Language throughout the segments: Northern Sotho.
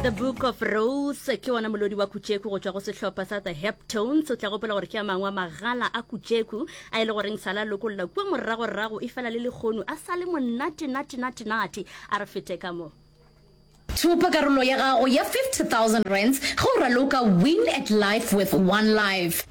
the book of rose ke wona molodi wa kutšeku go tšwa go sehlopha sa the heptones o tla gopola gore ke a mangwe a magala a kutšeku a e le goreng sala lokolla kua moragorago e fela le lekgonu a sa le monatenatenatenate a re fete ka mo Thopa karolo ya gago ya 50,000 rands ge o raloka Win at Life with One Life.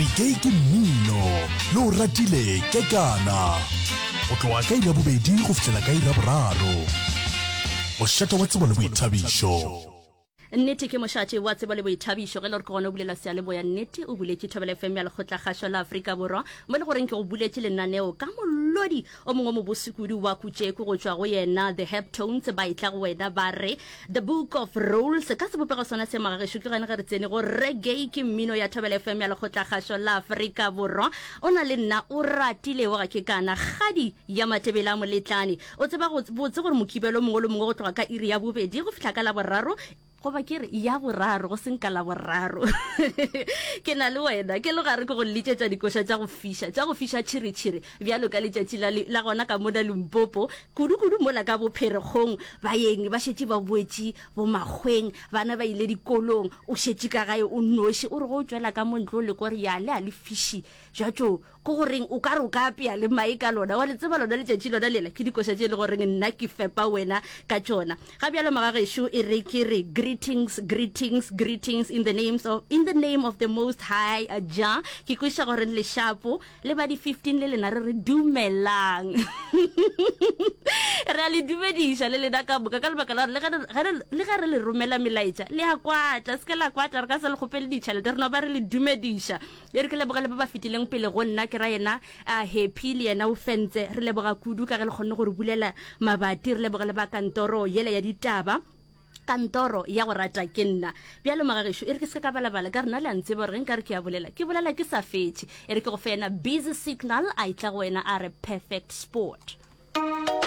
re ke ke mmino le o ratile ke kana go tloga ka ira bobedi go fihlela ka ira boraro mošate wa tsebo le boithabišo nnete ke mošate wa tsebo le boithabišo ge le gore ke gona o bulela sealeboya nnete o buletše thobela fm ya lekgotla kgašo la aforika borwa mo le goreng ke go buletše lenaneo ka molodi O mongwe mobose kudu wa kutšeku go tšwa go yena The Heptones ba etla go wena ba re, The Book of Rolls ka sebopego sona se magagešo. Tlogeng ge re tsene go Reggae ke mmino ya Thobela FM ya Lekgotlakgašo la Afrika Borwa. O na le nna o ratilego ga ke kana. Kgadi ya Matebele a Moletlane o tseba go botse gore Mokibelo mongwe le mongwe go tloga ka iri ya bobedi go fihla ka Laboraro Goba ke re, ya boraro, go seng ka Laboraro. Ke na le wena. Ke le gare ke go lletšetša dikoša tša go fiša, tša go fiša tšhiritšhiri, bjalo ka letšatši la, la gona ka mona Limpopo, kudukudu mola ka Bopherekgong. Baeng ba šetše ba boetše bomakgweng, bana ba ile dikolong, o šetše ka gae o nnoši, o re ge o tšwela ka mo ntle o leka gore ya le a le fiši bja tšo Ke go reng, o ka re o ka apea le mae ka lona, wa le tseba lona letšatši lona lela, ke dikoša tše e lego reng nna ke fepa wena ka tšona. Ga bjalo magagešo, e re ke re greetings, greetings, greetings in the names of, in the name of the most high Jah. Ke kweša go reng lešapo, le ba di 15 le lena re re dumelang. Re a le dumediša le lena ka moka ka lebaka la gore le ge re, ge re, le ge re le romela melaetša, le a kwatla, se ke la kwatla, re ka se le kgopele ditšhelete, re no ba re le dumediša. Le re ke leboge le ba ba fetileng pele go nna, ke ra yena a Happy le yena o fentse. Re leboga kudu ka ge le kgonne go re bulela mabati. Re leboge le ba kantoro yela ya ditaba, kantoro ya go rata ke nna. Bjalo magagešo, e re ke se ka ka balabala ka re na le a ntseba gore ge nka re ke a bolela, ke bolela ke sa fetše. E re ke go fe yena Busy Signal, a etla go wena a re Perfect Sport.